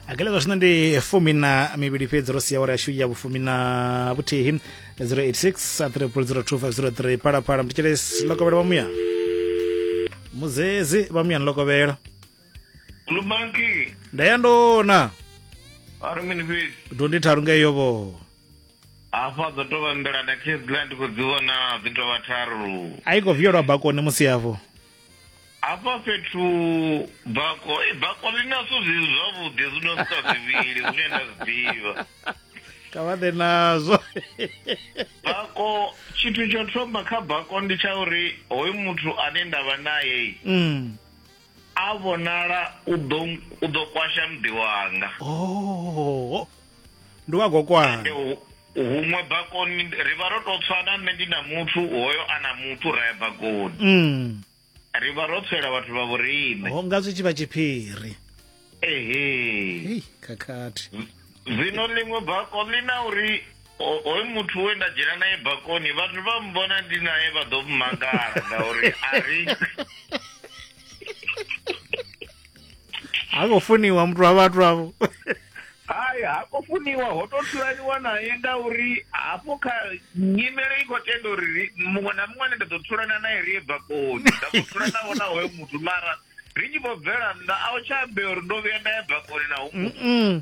akalezo zwino ndi fumi na mivhili fhedzi ro sia wara yashu ya vhufumi na vhuthihi 086 3002503 phalaphala mthetshelesi lokovhela vha muya muzezi vha muya ni lokovhela Lubanki, ndaya ndona ari mini fhedzi dondi tharu ngeyo vho hafha dzo tou vha nḓila na khezila ndi khou dzi vhona dzi tou vha tharu a i khou vhiyelwa bakoni musi yavho Hafha fhethu bako eh, bako ḽi na zwithu zwi zwavhuḓi zwi no sika zwivhili zwine nda zwi ḓivha kha vha ḓe nazwo bako tshithu tsho thoma kha bako ndi tsha uri hoyu muthu ane nda vha naye mm. a vhonala u ḓo u ḓo kwasha muḓi wanga oh ndi wa gokwani Huṅwe bakoni ri vha ro tou tswana nṋe ndi na muthu hoyo a na muthu ra ya bakoni mm. ri vha ro tswela vhathu vha vhoriṋe ho nga zwi tshi vha tshiphiri ehe khakhathi zwino ḽiṅwe bako ḽi na uri hoyu muthu we nda dzhena naye bakoni vhathu vha mbona ndi naye vha ḓo mmangala ngauri a ri ha khou funiwa muthu wa vhathu avho hai ha khou funiwa ho tou thulaniwa naye ngauri hafho kha nyimele i khou tenda uri ri- muṅwe na muṅwe ane nda ḓo thulana naye ri ye bakoni nda khou thulanavho na hoyo muthu mara ri tshi vho bvela nnḓa a u tsha ambea uri ndo vhuya nda ya bakoni na hu Mm-mm.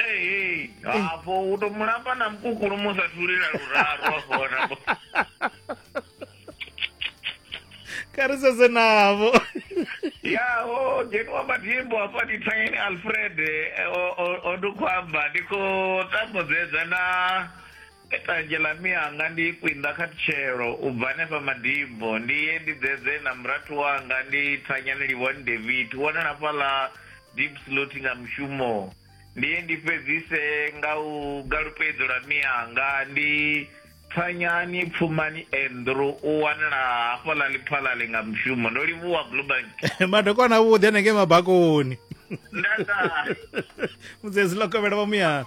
Ee, hafho u to mulamba na mukukulu musa thulila luraru hafho wana bo kha ri sedze navho ya o dzheniwa matimbo hafha ndi thanyeni alfred eh, o- o- o ndi khou amba ndi khou tambuzedza na Tanzhe ḽa mianga ndi ikwi nnḓa kha tshelo, u bva hanefha madimbo, ndi ye ndi ḓedze na murathu wanga, ndi thanyane livhoni David, wone na fhaḽa Diepsloot nga mushumo, ndi ye ndi fhedzise nga u galupe idzo ḽa mianga, ndi. Thanyani Pfumani Andrew, u wanala hafhaḽa Lephalale nga mushumo, ndo livhuwa Bluebank. Madokwana avhuḓi hanengei mabakoni. Nda ta. Mudzedzi ḽo kovhela vha muyani.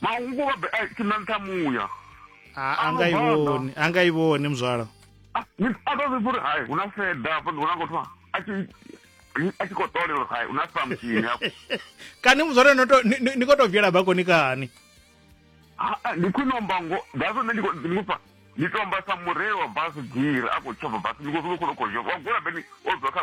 mahubo vha best na nṱha muya a nga i vhoni a nga i vhoni muzwala ni pata zwi uri hai hu na feda hafha ndi vhona ngothiwa a tshi a tshi khou ṱolela uri hai hu na samkini hafho kani muzwala ni khou tou bvela bakoni kani ndi khwine omba ngo that's nṋe ndi khou pfa ndi tomba sa mureili wa basi giri a khou tshova basi ndi khou zwi khou khou khou wa gula beni o dzwa kha